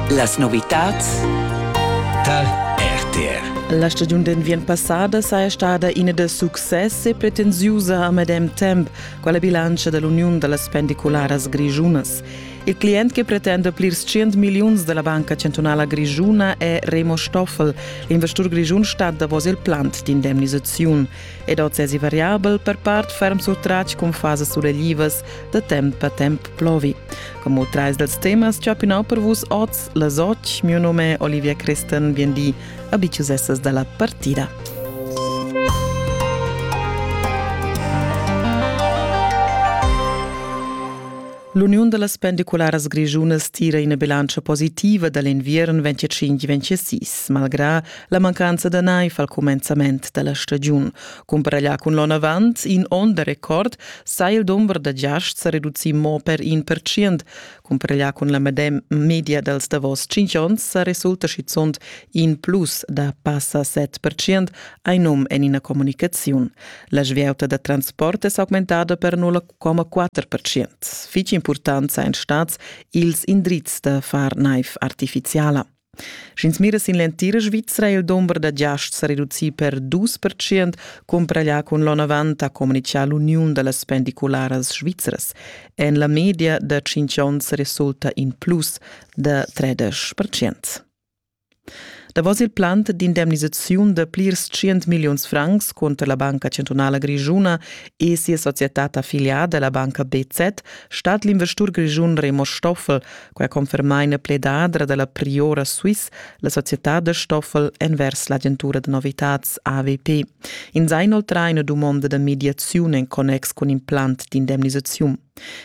Las novitads tal RTR. La stagiun d'enviern passada saja stada ina da success e pretensiusa a medem temp con la bilantscha dell'Uniun da las pendicularas grischunas. Il client che pretende plirs 100 miliuns della Banca Centrala Grischuna è Remo Stoffel, l'investur grischun stat davos il plant d'indemnisaziun ed oz è variabel per part ferm surtratg con fasas suleglivas da temp a temp plovi. Como trais dals temas chapinau per vus oz las och, mio nome è Olivia Christen, bien di, abitiusessas dalla partida. L'Uniun da las pendicularas grischunas tira ina bilantscha positiva da l'inviern 25-26, malgrà la mancanza da naiv al cumenzament da la stagiun. Cumprarglià cun l'on avant in onn da record sa il dumber da giasts reducì mo per in percient. Cumprarglià cun la medem media dals davos cinq onns sa resulta schizunt in plus da passa 7 percient, hai num en ina comunicaziun. La svieuta da transport è s'augmentada per 0,4 percient. Fitg important sain stats ils indrizs da far naiv artificiala. Sch'ins mira sin l'entira Svizra è il dumber da giasts sa reducì per dus percent cumpraglià cun l'onn avant, ha communitgà l'uniun da las pendicularas svizras. En la media da tschintg onns resulta in plus da tredesch percent. Davos il plant d'indemnisaziun da plirs 100 milliuns francs cunter la Banca Centrala Grischuna e sia societad affiliada, la banca BZ, stat l'investur grischun Remo Stoffel Quai conferma ina pledadra da la Priora Swiss, la societad da Stoffel envers l'agentura da novitads AVP. Ins ha inoltrà ina dumonda da mediaziun en connex cun in plan d'indemnisaziun.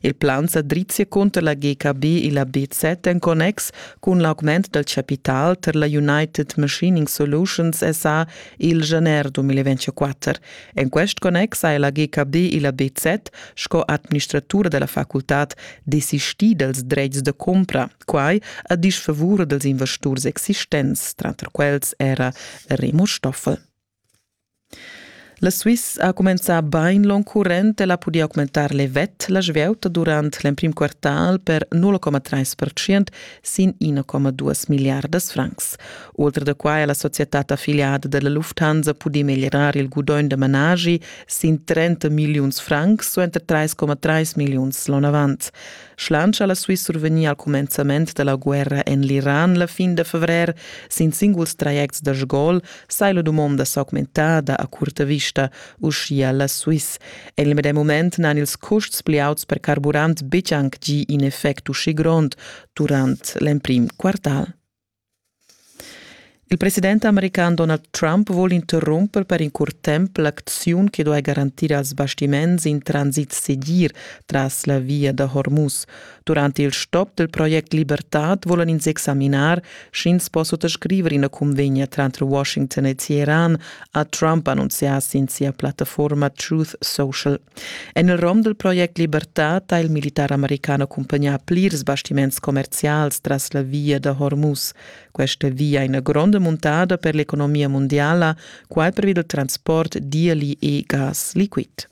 Il plan sa drizzia cunter la GKB e la BZ en connex cun l'augment dal chapital tar la United Machining Solutions SA il gener 2024. En quest connex ha ella GKD e la BZ sco administratura della facultad desistì dals dretgs da cumpra, quai a disfavur dels investurs existents, tranter quels era Remo Stoffel. La Swiss ha començà bain l'on current e la podia augmentar levet la svieuta durant l'emprim quartal per 0,3% sin 1,2 miliardas francs. Oltre da quai ha la società affiliata della Lufthansa pudì meglierar il gudogn da managi sin 30 milliuns francs suenter 3,3 milliuns l'on avant. Schlansch ha la Swiss survegnì al cumenzament da la guerra en l'Iran la fin da fevrer sin singuls trajects da Sgol, sai la dumonda s'augmentada a curta vista, uschia la Swiss. En il medem mument n'han ils custs pli auts per carburant betg anc gì in effect uschì grond durant l'emprim quartal. Il president american Donald Trump vul interrumper per in curt temp l'acziun che duai garantir als bastiments in transit segir tras la via da Hormuz. Durante il stop del project Libertad volan ins examinar, sch'ins po suttascriver ina convegna tranter Washington e Teheran, ha Trump annunzià sin sia plattaforma Truth Social. En il rom del project Libertad ha il militar americano accompagnà plirs bastiments commercials tras la via da Hormuz. Questa via è una grande montada per l'economia mondiale, qual per il transport di e gas liquid.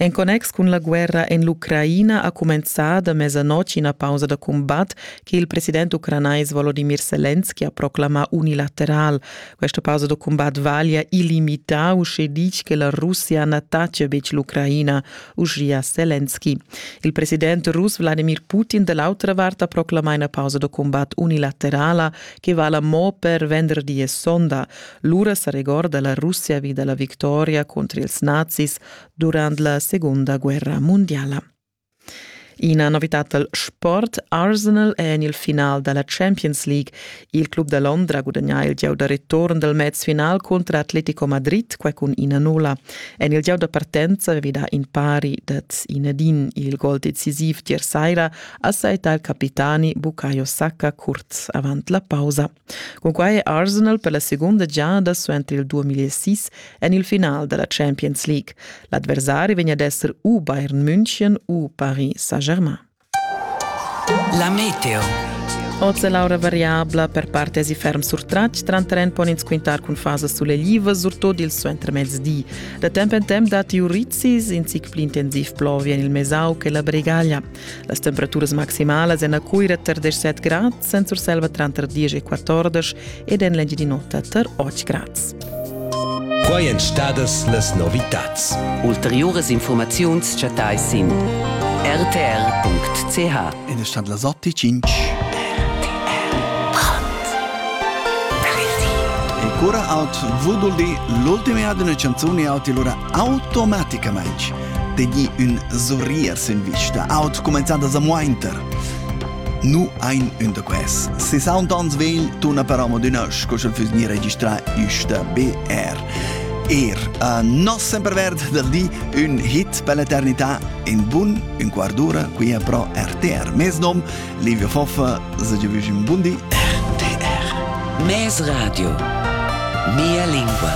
En connex cun la guerra en l'Ucraina ha cumenzà da mesanotg ina pausa da cumbat che il president ucranais Volodimir Selenski ha proclamà unilateral. Questa pausa da cumbat vaglia illimità, uschè ditg che la Russia n'attacchia betg l'Ucraina, uschia Selenski. Il president rus Vladimir Putin da l'autra vart ha proclamà ina pausa da cumbat unilaterala che vala mo per venderdi e sonda, Lura sa regorda la Russia vi da la victoria contro ils nazis durant la Segunda guerra mondiala. Ina novitad dal sport Arsenal è en il final da la Champions League. Il club da Londra gudagnà il gieu da return dal mezfinal contro Atletico Madrid quai cun ina nulla. En il gieu da partenza avevi dà in pari dad Inedin. Il gol decisiv tier Saira ha saità il capitani Bukayo Saka curz avant la pausa. Cunquai è Arsenal per la segunda giada suenter il 2006 en il final da la Champions League. L'adversari vegn ad esser u Bayern München u Paris Saint-Germain. La Meteo Oz è l'aura variabla per parte si ferm surtratg, tranterren pon ins quintar cun fasas suleglivas, surtut il suentermezdi. Da temp en temp datti urrizis, in zic pli intensiv plovi en il Mesau che la Bregaglia. Las temperaturas maximalas en a Cuira tar 17 grads, en Surselva tranter 10 e 14 ed en l'Engiadin'Ota tar 8 grads. Quai èn stadas las novitads. Ulteriuras informaziuns chattai sin rtr.ch. Ed è stat las 8.05. E cura out vuduldi l'ultima ad una canzone out lura automaticamaing tegni ün sorrier sin vista, aut cumenzand a samuainter. Nu ein ün da quels. Se sound ans vegl tuna però mod ün ösch, co sch'el füss gnir registrà üsta BR. Er a nos semperverd del di ün hit per l'eternità in bun un quart d'ura qui è pro RTR. Mes nom Livio Foffa, se ge vüsch un bundi RTR. Mes Radio. Mia lingua.